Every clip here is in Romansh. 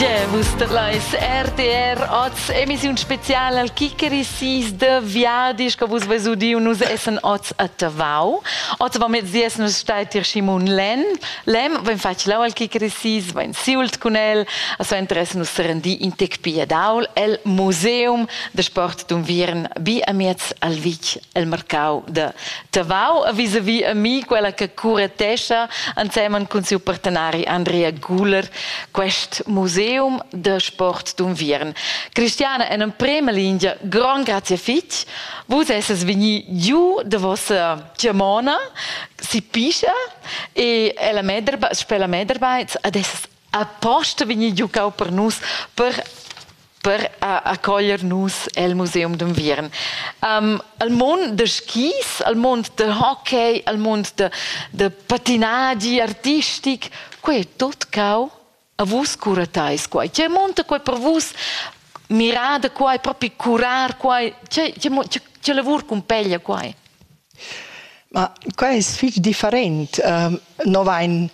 Yeah, vus lais RTR oz, emissiun spezial al Kikeri sis de Viadisch, che vus vais udiu nus essen oz a Tavau. Oz va mit sies nus stait ir Simon Len. Lem, ven fac lau al Kikeri sis, ven siult cun el, a so interess nus serendi in tec piadaul el Museum de Sport d'Unviern bi amiez al Vic el marcau de Tavau a visavi a mi quella che curetescha ensemen cun siu partenari Andrea Guler quest museum de sport d'unviern. Cristiana en emprema linea, gran grazie fitg, vus esses vegni giu de vossa Germana, si pischa e ella mederba, sper la Medarbeits ad esses Aposta vegnir giucau per nus per per a, a coglier nus el museum d'unviern. Um, al mond da skis, al mond da hockey, al mond da, da patinagi artistic, quei è tut cau a vus cura teis quai. Tgei monta quei per vus? Mirar da quai, propi curar quai, tgei, tgei, tgei lavur cumpeglia quai? Ma quai es fich different. No vain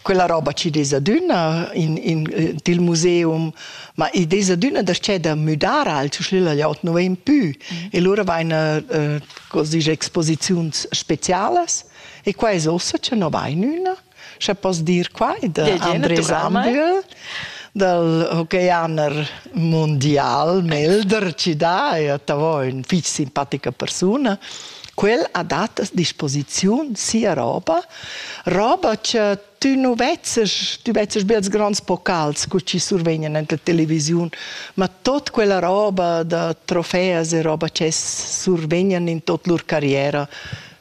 quella roba chi'd es adüna in in til museum, ma id es adüna darcheu da müdar als schlillagliot, nu vain pü. E lura vaina cos disch exposiziuns specialas e quai es uossa cha no vain üna. Sche poss dir quai da Andres Ambühl dal hockeyjaner mundial Melder ci dà e Tavo è una fitg simpatica persuna. Quel ha dat a disposiziun sia roba, roba che tü nu vezzes, tü vezzes be als grands pokals co ci survegnan en la televisiun, ma tot quella roba da trofeas e roba che survegnan in tot lur carriera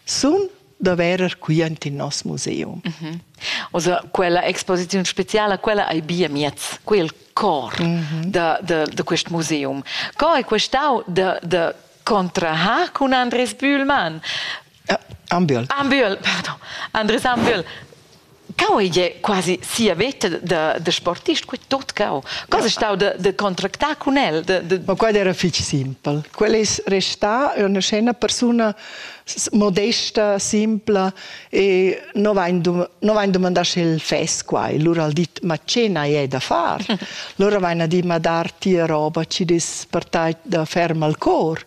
sun da verer qui ant in nos museum. Mm -hmm. Also quella exposiziun speciala, quella ei bia miez, quel cor mm -hmm. da, da, da quest museum. Co è questau da, da contrahar con Andres Bühlmann? Uh, Ambühl. Ambühl, pardon. Andres Ambühl. Cau ei quasi sia veta da, da sportist, quei tot cau. Cosa è stau de, de contractar cun el? De, de... Ma quella era fitg simpel. Quella è restà una scena persona modesta, simpla e non vain domandà se il fes qua. E lura ha dit, ma ce n'hai è da far? Lura vain a dir, ma dar tia roba ci dis per tai da ferma il cor.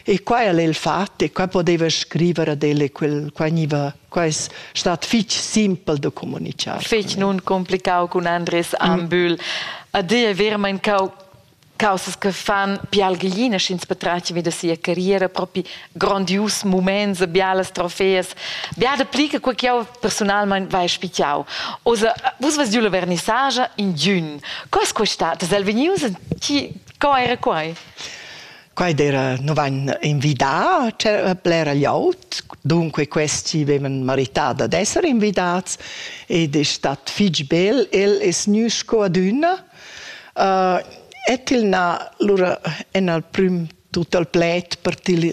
E qua al è il fatto e qua poteva scrivere ad elle quel, qua gniva Quai es stat fich simpel da comunichar. Fich nun complicau cun Andres Ambühl. A dir è vermain cau causas che fan pialglina sch'ins patratgi vi da sia carriera propi grandius moments e bialas trofeas bia da pli che quei che jau personalmein vai spichau oza vus vas giu la vernissagia in giun cos questa das el vegnius ti co era quai Quai d'eira nu vain invidà blera glieud, dunque questi vevan marità dad esser invidats ed es stat fich bel. El es gnü sco adüna et il n'ha lura en al prüm tut al pled per til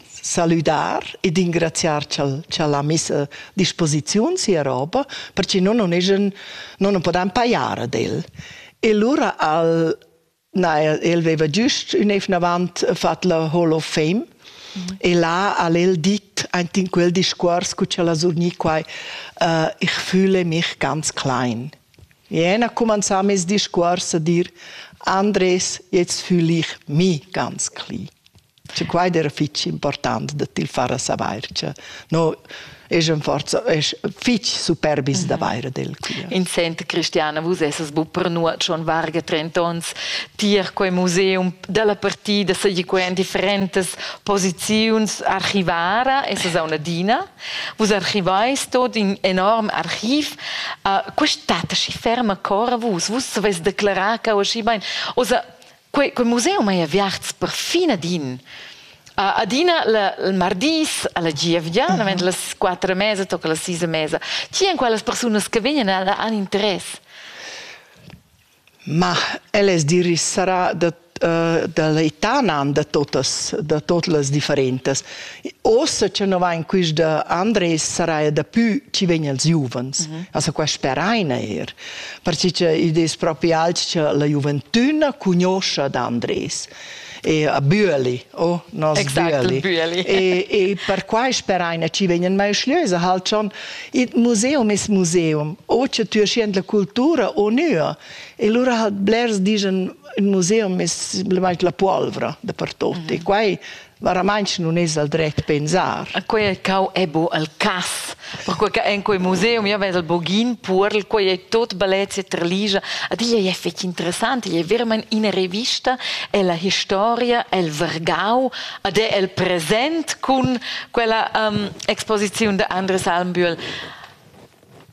salüdar ed ingraziar ch'al ha miss a disposiziun sia roba, perche no non eschan, no non podan pajar ad el. E lura al Na, el, el veva giust ün evnavant fat la Hall of Fame mm. e là al el dit aint in quel discuors cu c'el ha surgni quai uh, ich fühle mich ganz klein. Jen ha cumanzà mes discuors a dir Andres, jetzt fühle ich mich ganz klein. Che quai era fitg important da til far a savair che no es in forza es fitg superbis mhm. d'avair del quia. In sent Cristiana, vus essas bu per nuot schon varga 30 ons tier quei museum dalla partida seguiquen differentas posiziuns archivara, essas a una dina. Vus archivais tot in enorm archiv. Uh, quest'ata si ferma cora vus? Vus savais declarar ca osci bain. Osa Quei, quei museum ei aviarts perfin adin. Uh, adina la, il mardis alla gievgia, mm -hmm. las quattro mesa tocca la sisa mesa. Chi en quelles persunas che vengono han interesse? Ma eles diris sarà da uh, da l'Itanan da totas, da tot las differentas. Ossa che no va in quista Andres sarà da pü ci vegn els giuvens. Mm -hmm. Also qua speraina er. perché che id es propi alch cha la giuventüna cugnuoscha d'Andres e a Büeli, oh, nos exact, Büeli. Büeli. e, e perquai speraina chi vegnan mai schliösa halt schon il museum es museum, o che tü schiend la cultura o nua. E lura halt blers digen il museum es la puolvra dapertut. Mm -hmm. E quai Veramaintg nun es el dret pensar. A quai ch'eu è bo al cass, perquai che in quei museum io vez il bogin puorl, quai è tot bellezza e trligia, a disch ei fetg interessant, ei è verament ina revista, è la historia, è il Vergau, ad è il present cun quella um, exposiziun de Andres Almbühl.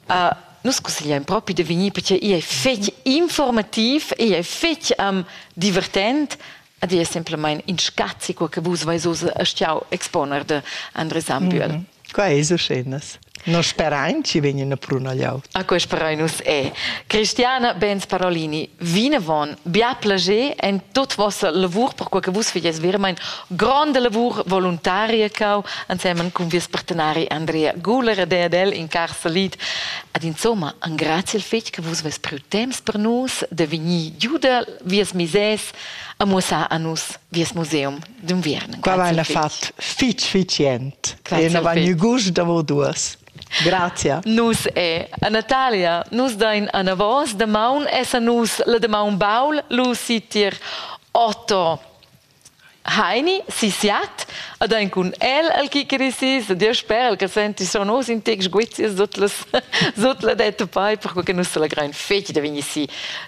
Uh, nus consigliain propi de vegnir perché ei è fetg informativ, ei è fetg um, divertent, Ed è semplamain in scazi, co che vus vais oz a stiau exponer de Andres Ambühl. Mm -hmm. Qua è uschennas. Non sperain ci vegnan a prunagliau. A quei sperain nus è. Cristiana Benz Parolini, vinavon, bia plager en tot vossa lavur, per quei che vus feies vermein gronda lavur voluntaria cau, ansemen cun vies partenari Andrea Guler ed el in car salit. Ad insomma, an grazie al fetg che vus veis priu temps per nus de vegnir giuda vies misers a muossar a nus vies museum d'unviern. Qua vain fat fich sufficient. E na vain gust davo duos. Grazia. Nus e a Natalia nus dain anavos damaun essan nus la damaun baul Lucy tier Otto Heini si Siat ad ein cun el al kikeri sis dir sper al che senti son os in tec sguizias sut las sut la detta poi per che nus la grein fetg da vegni si